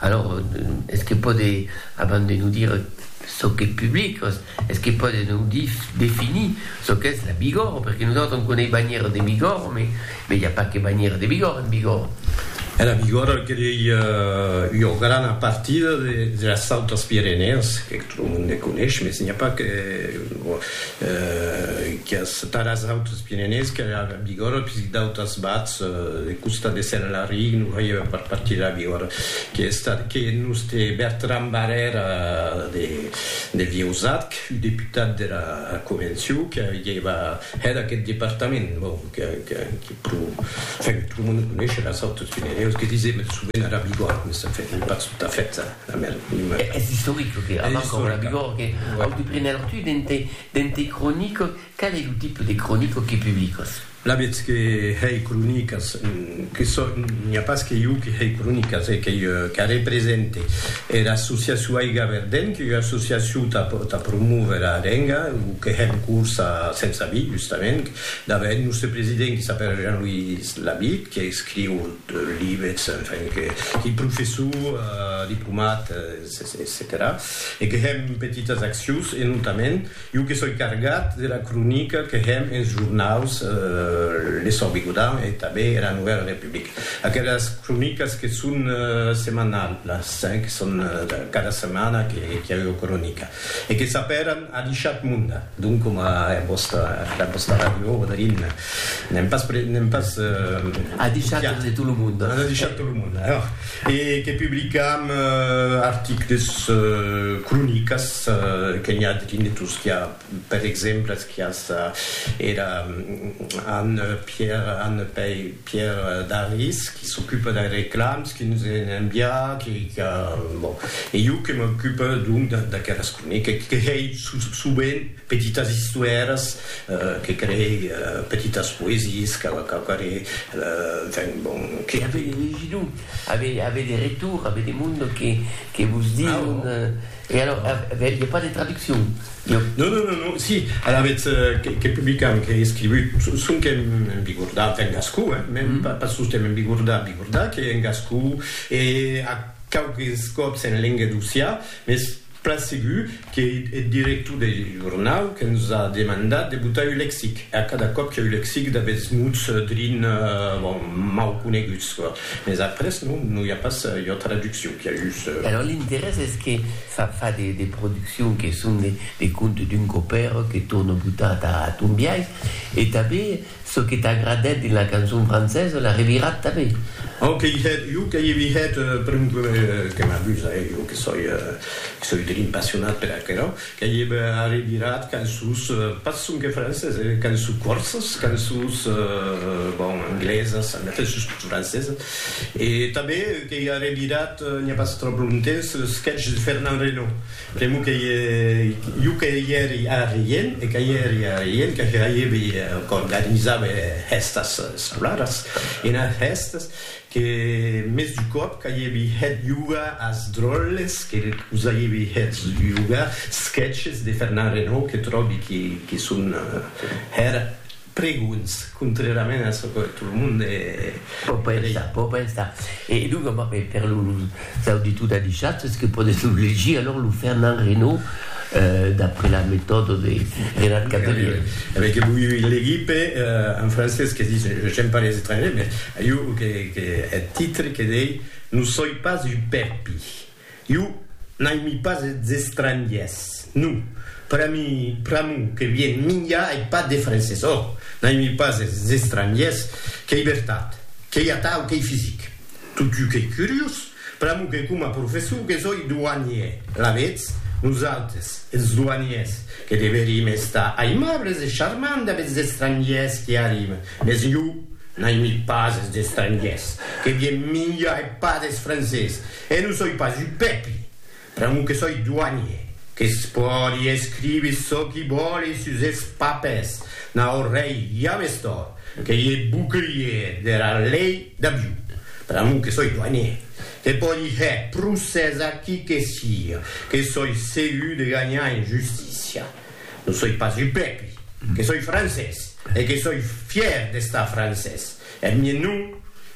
Alors, es que pòde, abans de nos dire çò qu'es public, es que pòde nos dire, definir çò qu'es la Bigòrre, perque nosautres on coneis banhièra de Bigòrre, mais mais i a pas que banhièra de Bigòrre en Bigòrre. E la Bigòrre qu'ei ua grana partida de las Autes Pirenèes, Lo monde ne conesh, mes n'i a pas que quias taras autres pirenés que la Bigorra, puisque d'autas bats de costa de Sena la Rie non veieva pas partir de la Bigorra, que estat que nos te Bertran Barrèra de Vieusat, que fut deputat de la Convencion, que avieva hèt aqueth departament, bon, que que pro, enfin, tot lo monde conesh las autres pireneus, que disem sovent ara Bigorra, mes enfin, non pas tot a fèt. Es istoric çò que avança Roland Bigorre, que au de prener tu dens tes cronicas, qual es lo tipe de cronica que publicas? Alavetz que hèi cronicas, que çò, n'i a pas que jo que hèi cronicas, e qu'ei qu'arrepresente era associacion Aiga Verden, qu'ei ua associacion tà promóver era lenga, o que hèm cors a Sens Abit, justament, davaent nòste president qui s'apèra Jean-Louis Labitte, que escriu libets, enfin, que li professor diplomat, etcetèra E que hèm petitas accions, e notament, jo que soi cargat de la cronica que hèm ens jornaus L'Essor Bigodan e tanben era Novèla Republica. Aquelas cronicas que son setmanalas, que son cada setmana que i a ua cronica e que s'apèran Adishat Monda. Donc coma hè vòsta hè vòsta radio Rodolin n'èm pas pre n'èm pas A deishat de tot lo monde. A deishat tot lo monde hè e que publicam articles cronicas que n'i a de tingutos qu'i a per exemple qu'i a ça era Anne Pierre Anne Pei Pierre Daris, qui s'ocupe dei reclams, qui nos en envia, qui, qui a, bon, e jo que m'ocupe donc d'aqueras cronica, que hei sovent petitas istoèras, que creei petitas poesies, que quauquarré, enfin, bon, que. Qu'avei legit, avei de retour, avei de monde que, que vos dion. E alors, aviá pas de traduccion? Non. Non, non, non, non, si, alavetz que publicam, qu'ei escrivut, sonque en bigordat, en gascon, eh, mèn pas sosten en bigordat, bigordat, qu'ei en gascon e a quauques còps en lenga d'Ossià, mès plan segur qu'ei eth director deth jornau que nos a demandat de botar un lexic, e a cada còp que'u lexic d'aguests mots drin, bon, mau coneguts, Mes après non, non i a pas ua traduccion, qu'i a just. Alors l'interès es que fa fa de de produccion que son de de contes d'un copèr que torna botar ta a ton biais e tanben çò que t'agradèt dins la cançon francesa l'as revirat tanben. Au que i hèt, jo que i vi hèt, per exemple, que m'amusa, eh, jo que soi, que soi drin passionat per aquerò, Qu'ei eb arribirat cançons, pas sonque francés, eh, cançons corsas, cançons, bon, anglesas, en effet, sustot francesas, e tanben qu'ei arribirat, n'i a pas tròp longtemps, le sketch de Fernand Reynaud. Pr'amor qu'ei jo que i èri arrien, e que i èri arrien, que hèibi, qu'organizava hèstas sablaras, ena hèstas, Que mès du còp qu'aievi hèt jugar as dròlles que us aievi hèt jugar sketches de Fernand Renaud que tròbi que son hèr pregons contrèrament a çò que tot lo monde. Pò pensar, pò pensar. E donc, per Çò de tot adishat es que pòdes lo legir alòr lo Fernand Reynaud d'après la metòda de Renat Cavelier. Avèc que voi legir pe en francés que dis j'aime pas les étrangers mais iu que eth titre que dei non soi pas un pèpi. Iu n'aimi pas es estrangiers. Non. Pera mi pr'amor que vien minjar ei pas de francés. Ò! N'aimi pas es estrangiers. Qu'ei vertat. Qu'ei atau qu'ei fisic. Totjou qu'ei curiós, pr'amor que coma professor que soi douanier, alavetz, nosaltres, es douaniers, que deverim estar aimables e charmants damb es estrangiers qui arriben, mès jo n'aimi pas es estrangiers, que vien minjar e pas des francés, e non soi pas un pèpli, Pr'amor que soi doanier, que's pòdi escriver çò qui vòle sus es papers, naut rei ja m'es tòrt, que i e bouclier dera lei d'Abiu. Pr'amor que soi doanier, que pòdi hèr procès a qui que siga, que soi segur de ganhar en justícia. Non soi pas upèpi, que soi francés e que soi fièr d'estar francés, Eth mien nom,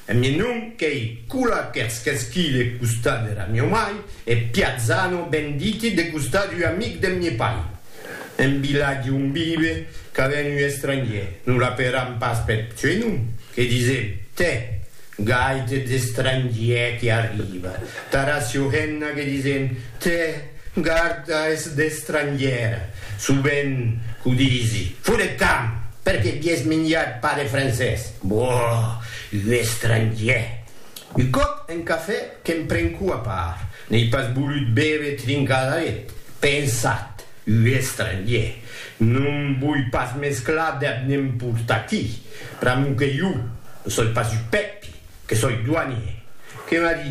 eth mien nom qu'ei Kula Kerskeski de costat dera mieu mai e Piazzano Benditi de costat d'ua amic deth mie pai. En vilatge on vive ca ven un estrangier, non l'aperam pas peth suei nom, que disem, tè, gaite d'estrangier que arriba, tara Siohenna que disem, Te garda es d'estrangièr, sovent qu'o disi. Foret tant! Per que vies minjat pas de francés? Boh! Un estrangièr! Un còp en cafè que'm prenco a part, n'ei pas volut béver trincadaret. Pensat, un estrangièr! No'm voi pas mesclar dab n'emportatí. Pr'amor que jo, ne soi pas un pèpi, que soi doanier. Que m'a dit?